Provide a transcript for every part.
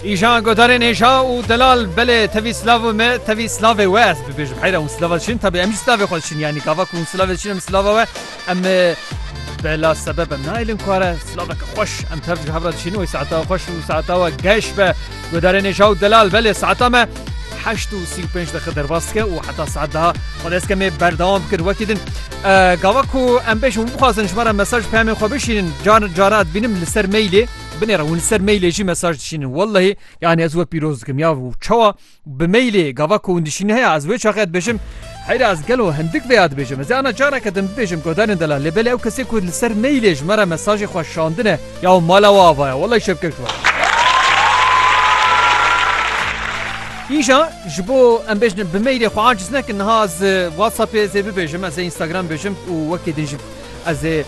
Îjan godarên hêja û delal belê tevî silav û me tevî silavê we ez bibêjim heyra hûn silava diçin tabi em jî silavê xwe diçin yanî gava ku hûn silavê diçin em silava we em bela sebeb em naelin ku are silaveke xweş em tev ji hevra diçin wê saeta xweş û saeta we geş be godarên hêja û delal belê saeta me heşt û sî û pênc dexe derbas dike û heta saet daha xwe destke me berdewam bikir wekî din Gava ku em bêjin bixwazin ji me re mesaj peyamên xwe bişînin car cara dibînim li ser mailê binêre hûn li ser mailê jî mesaj dişînin wellehî yanî ez we pîroz dikim ya û çawa bi mailê gava ku hûn dişînin heye ez wê çaxê dibêjim Heyra ez gelo hindik vê ya dibêjim ez ana careke dim dibêjim godanên dela lê belê ew kesê ku li ser mailê ji me re mesajê xwe şandine ya mala we avaya wellehî şevkeş we. Îja ji bo em bêjin bi mailê xwe aciz nekin niha ez WhatsAppê ez ê bibêjim ez ê Instagram bêjim û wekî din jî ez ê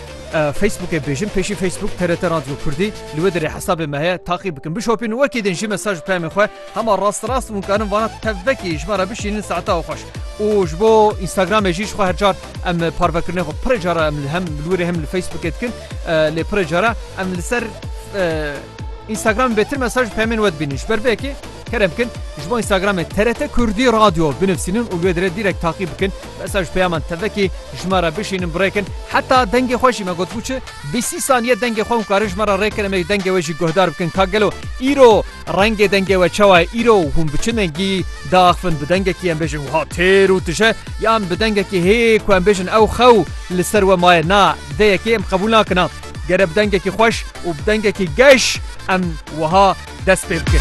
Facebookê bêjim pêşî Facebook TRT Radyo Kurdî li wê dirê hesabê me heye taqî bikin bişopîn û wekî din jî mesaj peyamê xwe hema rast rast hûn karin vana tevvekî ji me re bişînin saeta xweş û ji bo Instagramê jî ji xwe her car em parvekirinê xwe pirê cara em li hem li wê rê hem li Facebookê dikin lê pirê cara em li ser Instagram bêtir mesaj peyamên we dibînin ji ber vê yekê Kerem bikin ji bo Instagramê TRT Kurdî Radyo binivîsînin û li wê dirê dîrek taqî bikin. Besa ji peyaman tevekê ji me re bişînin birêkin. Heta dengê xwe jî me gotibû çi bîst sî saniye dengê xwe hûn karin ji me re rêkin em ê dengê we jî guhdar bikin ka gelo îro rengê dengê we çawa ye îro hûn bi çi dengî diaxivin bi dengekî em bêjin wiha têr û tije yan bi dengekî hê ku em bêjin ew xew li ser we maye na dê yekê em qebûl nakin na gere bi dengekî xweş û bi dengekî geş em wiha dest pê bike.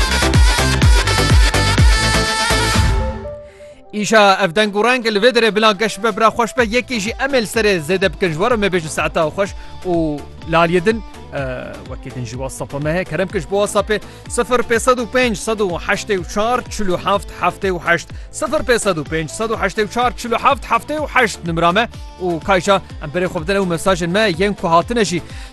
Îşa ev deng û reng li vê derê bila geş be bira xweş be yekê jî em ê li serê zêde bikin ji were me bêjin saeta xweş û laliyê din wekî din jî whatsapp me heye kerem kir ji bo whatsappê 0505 184 47 78 0505 184 47 78 nimra me û kayşa em berê xwe bidin ew mesajên me yên ku hatine jî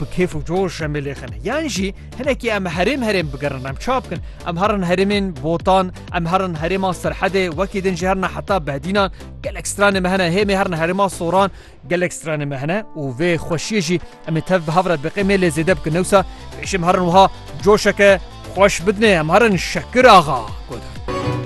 bi kêf û coş em ê lêxine yan jî hinekî em herêm herêm bigerin em çap bikin em herin herêmên botan em herin herêma serhedê wekî din jî herna heta behdînan gelek stranê me hene hêmê herna herêma soran gelek stranê me hene û vê xweşiyê jî em ê tev bi hevra biqê mê lê zêde bikin newsa pêşim herin wiha coşeke xweş bidinê em herin şekir axa godan.